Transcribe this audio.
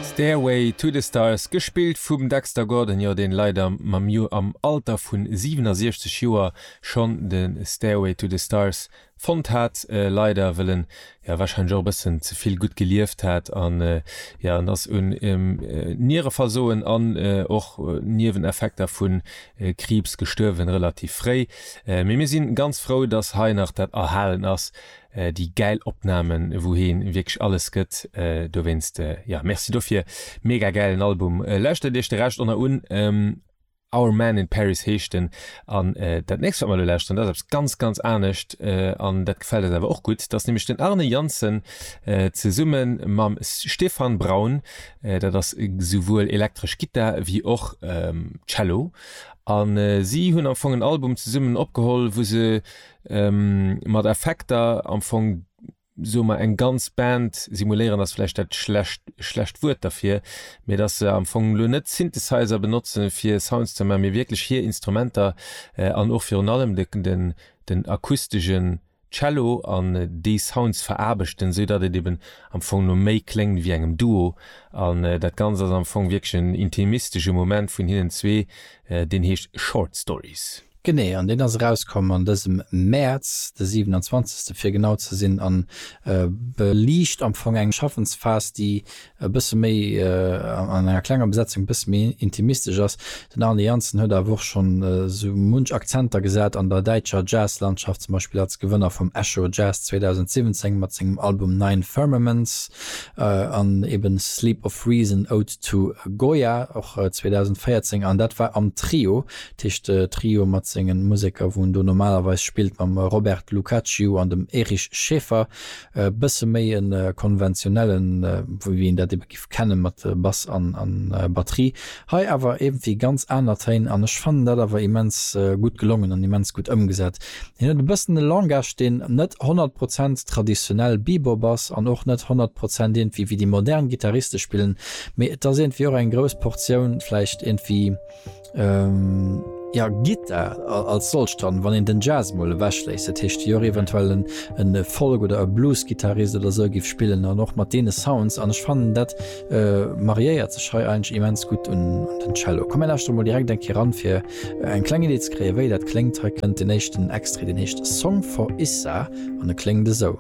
Stairway to the Stars, gespillt vum Dexter Gordon, jo deen leider mam jo am Alter vun 67 Joer schonn den Stairway to the Stars fonnt hat, leider wëll en jo wahrscheinlech och e bëssen zevill gutt gelieft hat an jo en ass un Niereversoen an och Nieweneffekter vun Kriibs gestuerwen, relativ fréi, mee mir sinn ganz frou dass hei nach dat erhalen ass. Déi gäil Opnahmen wou heen wierklech alles gëtt dowéinst, jo merci dofir. Mega gäilen Album, lauschtert iech de Rescht oner un. Our Man in Paris heescht en an dat nächst wat mer elo lauschteren dat ass eppes ganz ganz anescht an dat gefält eis awer och gutt. Dat ass nämlech den Arne Janssen zesumme mam Stefan Braun, dat ass souwuel elektresch Gittar wéi och Cello an si hunn am Fong en Album zesummen opgeholl wou se Mat Effekter am Fong, soe mer, eng ganz Band simuléieren ass vläicht dat schlecht schlecht Wuert derfir, mee datt se am Fong elo net Synthesizer benotzen, fir Sounds ze man, mee wierklech hir Instrumenter an och virun allem de den den akustegen Cello an déi Sounds veraarbechten, sou datt et eben am Fong no méi kléngt wéi engem Duo. An dat Ganzt ass am Fong wierklech en intimistesche Moment vun hinnen zwee, deen heescht Short Stories. Genee, an deen ass erauskomm an dësem Mäerz, de 27. fir genau ze sinn, a beliicht am Fong eng Schaffensphas, déi e bësse méi an enger klenger Besetzung e bësse méi intimistesch ass. Den Arne Janssen huet awer och schonn esou munch Akzenter gesat an der däitscher Jazz-Landschaft, zum Beispill als Gewënner vum Echo Jazz 2017 mat sengem Album Nine Firmaments an eben Sleep of Reason, Ode to Goya, och 2014, an dat war am Trio Tisch de Trio mat sengen Museker wou en do normalerweis spillt mam Robert Lucacciu an dem Erich Schaeffer. E bësse méi e konventionellen wéi een dat ebe giff kennen mat Bass an an Batterie. Hei awer iergendwéi ganz aner Téin an ech fannen dat awer immens gutt gelongen an immens gutt ëmgesat. Hien huet e bëssen e Langage deen net 100 Prozent traditionell Bebop ass an och net 100 Prozent iergendwéi wéi déi modern Gitarriste spillen mee et ass iergendwéi och eng grouss Portioun vläicht iergendwéi Ähm. Ja gitt dat als solcht dann, wann een den Jazz mol ewech léisst, dat heescht jo eventuell en en Folk oder e Bluesgittarist oder sou giff spillen an och mat deene Sounds an ech fannen dat mariéiert sech hei eigentlech immens gutt un den Cello. Komm mir lauschteren mol direkt eng Kéier eran fir eng kleng Idee ze kréien wéi dat kléngt. Hei kënnt den éischten Extrait, deen heescht Song for Issa an e kléngt esou.